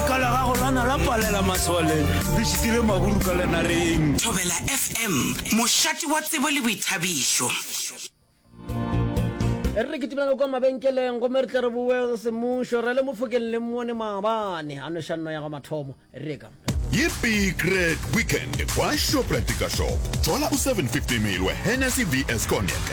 ka la gago lana la palela masole le šitile maburu ka lenareng Thobela FM, mošate wa tsebo le boithabišo. E re kitimela kwa mabenkeleng gomme re tle re boe go semmušo re le mofokeng le mmone maabane a nošanno ya ga mathomo reka Ye big red weekend kwa Shoprite ka shop. Thola u 750 ml wa Hennessy VS Cognac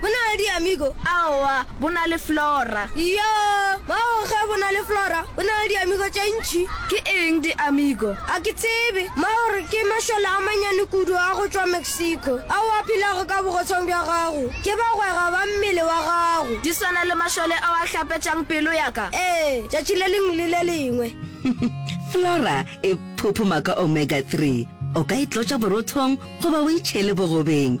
Bo na le diamigo? Aowa, bo na le flora. Iyo, bao ge bo na le flora, bo na le diamigo tše ntši. Ke eng diamigo? A ke tsebe. Maori ke mašole a mannyane kudu a go tšwa Mexico ao a phelago ka bogotshong bja gago. Ke bagwera ba mmele wa gago. Di swana le mašole ao a hlapetšang pelo ya ka? Ee, tšatši le lengwe le le lengwe. Flora e phophoma ka omega-three. O ka e tlotša borothong goba o e tšhele bogobeng.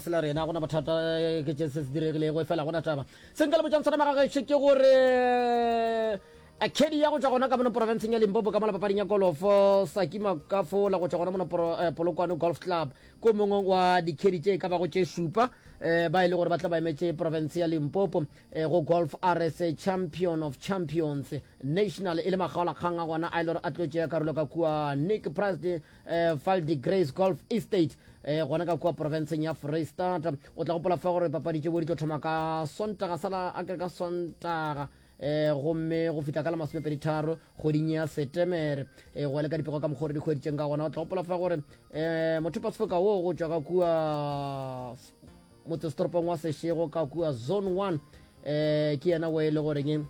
sela rena gona bothata ke tše se se diregilego e fela gona taba se nka le botšang sona magagešo ke gore kedi ya go tšwa gona ka mono porofenseng ya limpopo ka mola papading ya golofo saki makafo la go tšwa gona mono eh, polokwane golf club ko mongwe wa dikedi tše ka bago tše šupa eh, ba e le gore ba tla ba emetše porofense ya limpopo eh, go golf rs champion of champions national e le magaolakgang a gona a e le gore a tlo tšea karolo ka kua nick price eh, val de grace golf estate eh, gona ka kua porofenseng ya freistata o tla gopola fa gore papadi tše bo di tlo thoma ka sontaga sala a kere ka sontaga eh gomme go fihla ka la masomepedi tharo kgweding ya setemere eh go le ka dipego ka mokgore di kgweditseng ka gona o tla gopola fa gore eh motho pasfoka wo go tšwa ka kua motsesetoropong wa sešego ka kua zone one eh ke yena wo e le goreng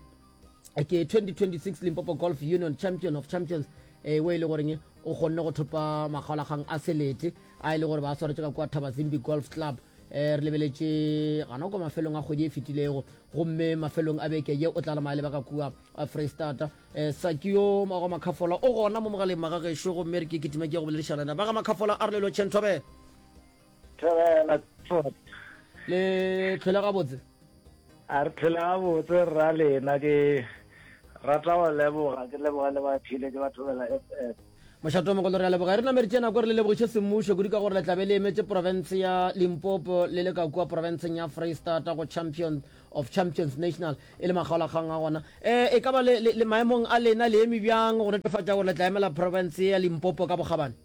ke 2026 limpopo golf union champion of champions e eh, e le goreng o kgonne go thopa makgaolakgang a selete a e le gore ba swaretse ka kwa thaba zimbi golf club eh, re lebeletše gana kwa mafelong a kgwedi e fetilego gomme mafelong a beke ye o tla lemaya lebaka kua eh, freestata um sakio mago makgafola o gona mo mogaleng magagešo gomme re ke kitima ke go boledišanana ba ga makgafola a re lelo chentobele thobela le tlhole gabotse a re tlhole gabotse rra lena ke rata go leboga ke leboga le ba phile ke ba thobela f f mošato mogolo re a leboga e re nameritše nako re le lebogiše semmušo kudu ka gore le tlabe le emetše porofense ya limpopo le le ka kua porofenseng ya freestata go champion of champions national e le makgaolakgang a gona um e ka ba le maemong a lena le eme bjang go netefatša gore le tla emela porofense ya limpopo ka bokgabane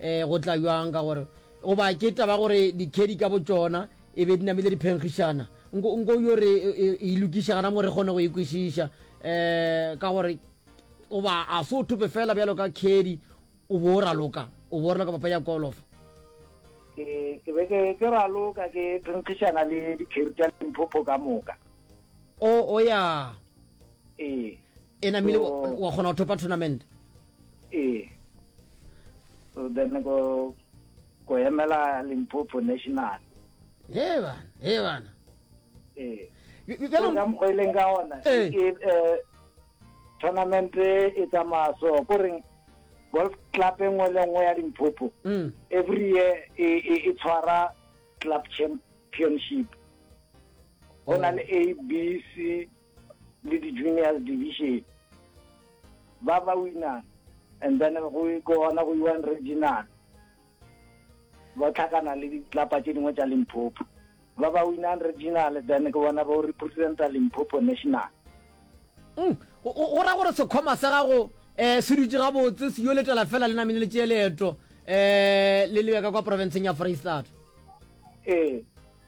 um go tla bjang ka gore goba ke taba gore dikhedi ka botšona e be di namile diphenkgišana nko nko yo re e, e, e lokiša gana mo re kgone go ikwešiša e um ka gore goba a se o thope fela bjalo ka khedi o bo o raloka o bo o raloka papa ya kolofa ke be ke raloka ke phenkgišana le dikheri tša limphopho ka moka o o ya ee e namile wa kgona go thopa tournament ee so then ko ko emela limpopo national ee bana ee bana ee ka mokgwa e leng ka ona um tournament e tsamaya so ko reng golf club e nngwe le nngwe ya limpopo mm. every year e, e, e tshwara club championship go na le a b c le di-juniors division ba ba wina and then go gona go iwan regional ba tlhakana le ditlapa tše dingwe tša limpopo ba ba winang regional then ke bona ba o representa limpopo national mm, go ra gore sekgoma sa gago um se dutse gabotse se yo letela fela le namene le tšee leeto um le lebeka kwa profenseng ya freistata ee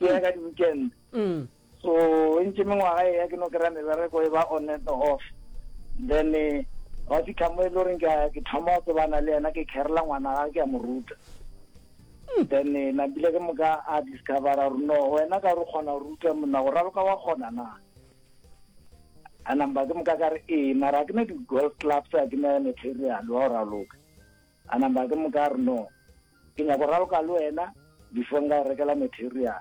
ke ya ka di-weekend mm. so e ntse mengwaga e ya ke no kry-a mebereko e ba on and off then eh, ba fitlha mo e le goreng ke thoma go tsebana le yena ke kherela ngwana ga ke ya mo ruta hmm. then eh, nabile ke moka a discovera gore no wena ka re kgona go ruta monna go raloka wa kgona na a number ke moka ka re ee mara ke ne di-golf clubs a ke ne material wa go raloka A namba ke mo ka re, No, ke nyaka go raloka le wena before nka go rekela material.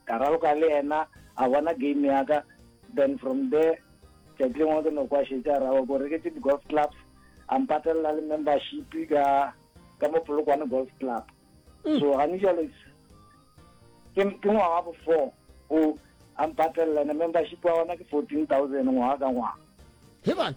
Ka raloka le yena, a bona game ya ka, then from there tšatši lengwe ke no kwa šetše a raloka gore ke tše di-golf clubs, a mpatelela le membership ka ka mo Polokwane Golf Club. So gane jalo ke ke ngwaga wa bo four o a mpatelela, and membership wa gona ke fourteen thousand ngwaga ka ngwaga. He bana!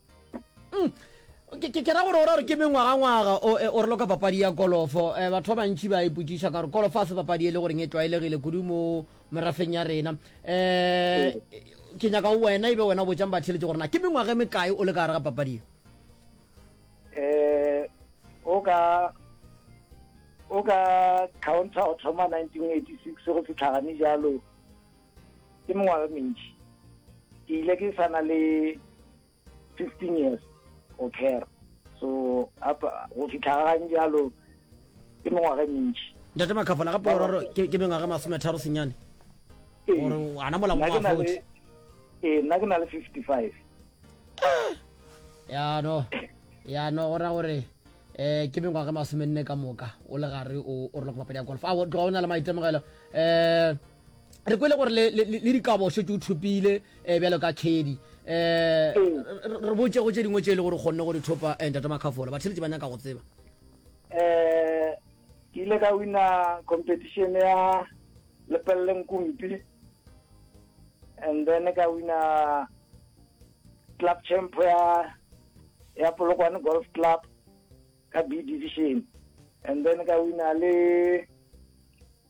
ke ra gore o ra gore ke mengwagangwaga e, o re loka papadi ya kolofo um batho ba bantšhi ba ipotsiša ka gore kolofo a se papadi e le goreng e tlwaelegile kudu mo merafeng ya rena um ke nyaka wena e be wena o botsang batheletše gore na ke mengwaga e mekae o le ka gare ga papadi e um o ka o ka counter o thoma nineteen eighty six go fitlhagane jalo ke mengwaga mentši ke ile ke sana le fifteen years go care so go fitlha gang jalo ke mengwaga e mentši ntate makhafola gape oraro ke mengwaga masome tharo senyane ee. gore ana molamo wa forty ee nna ke na le fifty five ah! yano yano go ra gore eh ke mengwaga masome nne ka moka o le gare o roloka papadi ya golf a o na le maitemogelo um re kwele gore le, le, le dikabo o šetše o thopile um bjalo ka khedi um re botsego tše dingwe tše e le gore o kgonne go di thopa um tata makhafola batheletše ba nyaka go tseba um ke ile ka wina competition ya lepeleleng kumpi and then ka wina club champ ya ya polokwane golf club ka b division and then ka wina le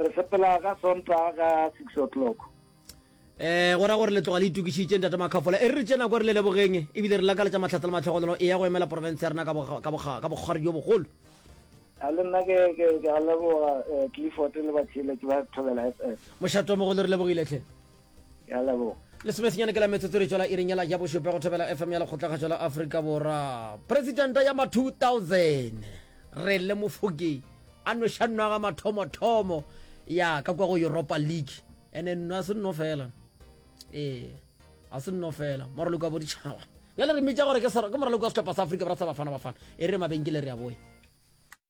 re sepela ka sontaga ka six o'clock eh go ra gore le tloga le itokišitše ntate makhafola e re re tše nako re le lebogeng ebile re lakaletša mahlatla le matlhogonolo e ya go emela porofense ya rena ka bokgwari jo bogolo a le nna ke a leboga eh, clifford le batšheletši ba thobela f m mošato mogolo re lebogiletlhe ya leboga lesomesenyane ke la metsotsorišo la iring yela ja bošupe go thobela fm ya lekgotlakgašo la aforika borwa presidenta ya ma 2000 re le mofoki a nošannwaga mathomothomo ya ka kwa go europa league ene nno a se nno fela ee a se nno fela moraloko wa boditšhaba bjale re mmitša gore ke moraloko wa setlhopha sa afrika bra sa bafana bafana e re mabenkele re ya boya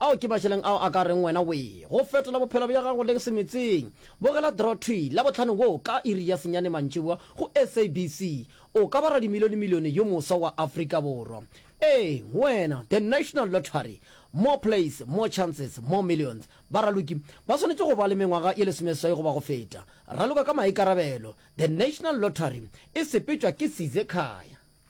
Ao ke mašeleng ao a ka reng wena wee go fetola bophelo bja gago le se meetseng. Bogela Draw Thwi Labohlano woo ka iri ya senyane mantšiboa go SABC. O ka ba radimilionemilione yo moswa wa Afrika Borwa. Eeng, wena! The National Lottery, More plays, more chances, more millions. Baraloki ba swanetše go ba le mengwaga ye lesomeswai goba go feta. Raloka ka maikarabelo. The National Lottery e sepetšwa ke Size Khaya.